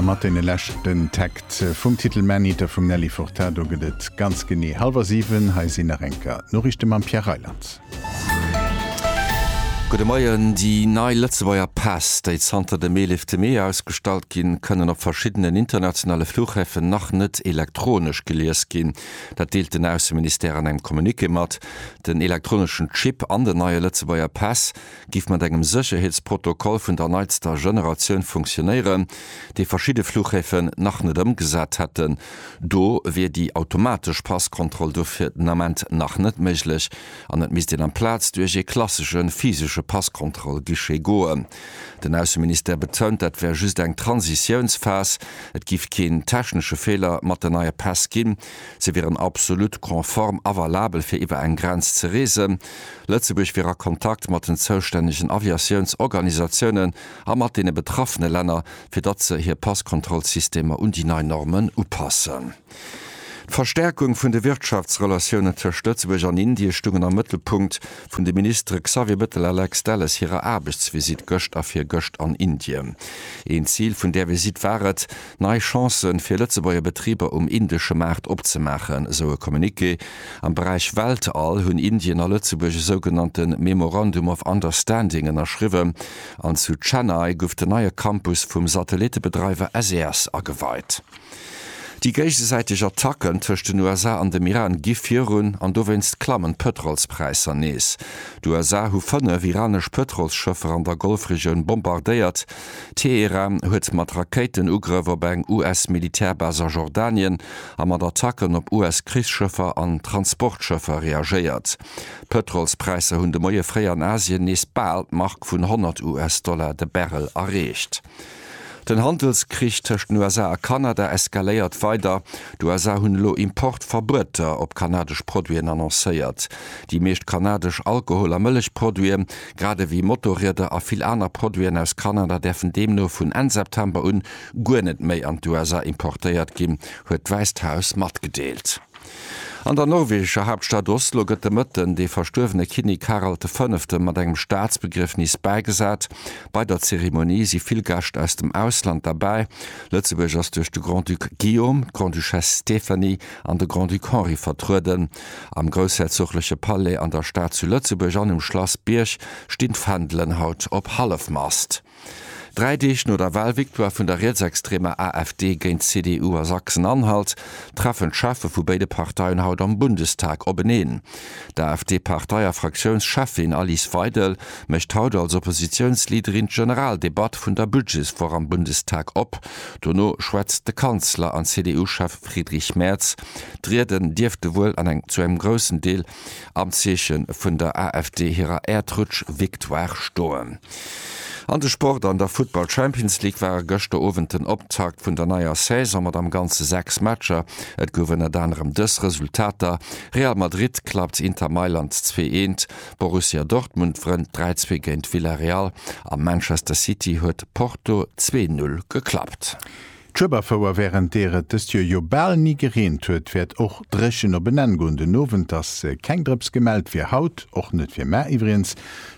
A mat deene leschten Takt vum Titel Maneater vum Nelly Furtado gëtt et ganz genee hallwer siwen. Hei sinn nach eng Kéier d'Noriichte mam Pierre Reyland. Gudde Moien, Déi nei Lëtzebuerger Päss, déi zanter dem 11 Mee ausgestallt ginn, kënnen op verschiddenen internationale Flughäfen nach net elektronesch gelies ginn. Dat deelt den Ausseministère an engem Communiqué mat. Den elektroneschen Chip an den neie Lëtzebuerger Päss giff mat engem Sécherheetsprotokoll vun der neitster Generatioun funktionéieren, dee verschidde Fluchhäfen nach net ëmgesat hätten. Do wier déi automatesch Passkontroll dofir den Ament nach net méiglech an et misst een amplaz duerch ee klassesche physesche Passkontroll-Guichet goen. Den Ausseministère betount, dat wär just eng Transitiounsphas, et giff keen technesche Feeler mat den neie Päss ginn, se wieren absolut konform a valabel fir iwwer eng Grenz ze reesen. Lëtzebuerg wier a Kontakt mat den zoustännegen Aviatiounsorganisatiounen a mat deene betraffene Länner, fir datt se hir Passkontrollsystemer un déi nei Normen upassen. D'Verstärkung vun de Wirtschaftsrelatiounen tëscht Lëtzebuerg an Indie stungen am Mëttelpunkt vun de Ministere Xavier Bettel a Lex Delles hirer Aarbechtsvisitt gëscht a virgëscht an Indien. Een Zil vun där Visitt war et, Nei Chancë fir Lëtzebuerger Betriber um indesche Maart opzemaachen, esou e Communiqué. Am Beräich Weltall hunn Indien a Lëtzebuerg e sougenannte Memorandum of Understanding ënnerschriwwen an zu Chennai guff den neie Campus vum Satellittebedreiwer SES ageweit. Déi géigesäiteg Attacken tëscht den USA an dem Iran gi virun an dowéinst klammen d'Pëtrolspräisser nees. D'USA hu fënnef iranesch Pëtrolsschëffer an der Golfregioun bombardéiert. Teheran huet mat Rakéitenugrëff op eng US-Militärbas a Jordanien a mat Attacken op US-Krichsschëffer an Transportschëffer reagéiert. D'Pëtrolspräisser hunn de Moie fréi an Asien nees bal d'Mark vun 100 US-Dollar de Barrel erreecht. Den Handelskrich tëscht den USA a Kanada eskaléiert weider. D'USA hunn elo Importverbueter op kanadesch Produiten annoncéiert. Déi meescht kanadesch Alkohol a Mëllechproduite grad ewéi Motorrieder a vill aner Produiten aus Kanada däerfen deemno vun Enn September un guer net méi an d'USA importéiert ginn, huet d'Wäisst Haus matgedeelt. An der norwegescher Haaptstad Oslo gëtt de Mëtten dee verstuerwene Kinnek Harald de Fënnefte mat engem Staatsbegriefnis bäigesat. Bei der Zeremonie si vill Gäscht aus dem Ausland derbäi. Lëtzebuerg ass duerch de Grand-Duc Guillaume, d'Grande-Duchesse Stéphanie an de Grand-Duc Henri vertrueden. Am groussherzogleche Palais an der Stad zu Lëtzebuerg an um Schlass Bierg stinn d'Fändelen haut op Hallefmast. Dräi Deeg no der Wahlvictoire vun der rietsextremer AfD géint d'CDU a Sachsen-Anhalt treffen d'Cheffe vu béide Parteien haut am Bundestag openeen. D'AfD-Partei a Fraktiounscheffin Alice Weidel mécht haut als Oppositiounsleaderin d'Generaldebatt vun der Budgetswoch am Bundestag op. Dono schwätzt de Kanzler an CDU-Chef Friedrich Merz D'Rieden dierfte wuel an eng zu engem groussen Deel am Zeeche vun der AfD hirer Äerdrutsch-Victoire stoen. An de Sport, An der Futtball Champions League ware gëschter Owend den Optakt vun der neier Saison mat am Ganze 6 Matcher. Et gouf ënnert anerem dës Resultater, Real Madrid klappt Inter Mailand 2 Eent, Borussia Dortmund wrënnt 3 Zwee géint Villarreal a Manchester City huet Porto 2 Null geklappt. D'Schueberfouer, wärend deer et dëst Joer jo bal ni gereent huet, wäert och dréchen op en Enn goen. Den Owend ass keng Drëps gemellt fir haut, och net fir mar iwwregens,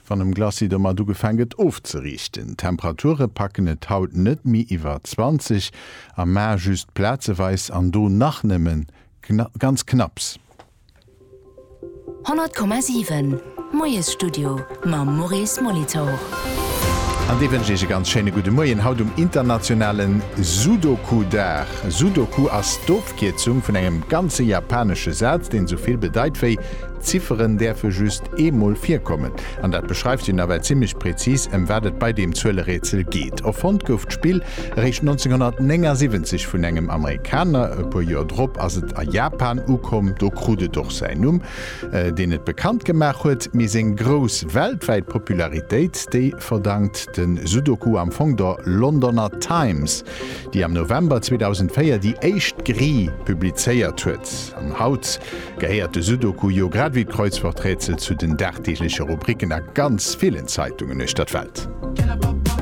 wann um Glacis domat ugefaang gëtt ofzeriichten. D'Temperature packen et haut net méi iwwer 20 a mar just plazeweis an do nach nëmmen ganz knapps. 100,7 Moiesstudio mam Maurice Molitor. An dee wënscht Iech e ganz schéine gudde Moien haut um internationale Sudoku-Dag. Sudoku ass d'Ofkierzung vun engem ganze japanesche Saz, deen esou vill bedeit wéi, Zifferen däerfe just eemol virkommen. An dat beschreift jo nawell zimmlech prezis, ëm wat et bei deem Zuelerätsel geet. Erfonnt gouf d'Spill Eréischt 1979 vun engem Amerikaner, e puer Joer drop ass et a Japan ukomm. Do krut et och säin Numm, deen et bekannt gemaach huet. Mee seng grouss weltwäit Popularitéit, déi verdankt de Sudoku am Fong der Londoner Times, déi am November 2004 déi éischt Grille publizéiert huet. An haut gehéiert de Sudoku jo grad ewéi d'Kreuzworträtsel zu den dagdeegleche Rubriken a ganz villen Zeitungen uechter d'Welt.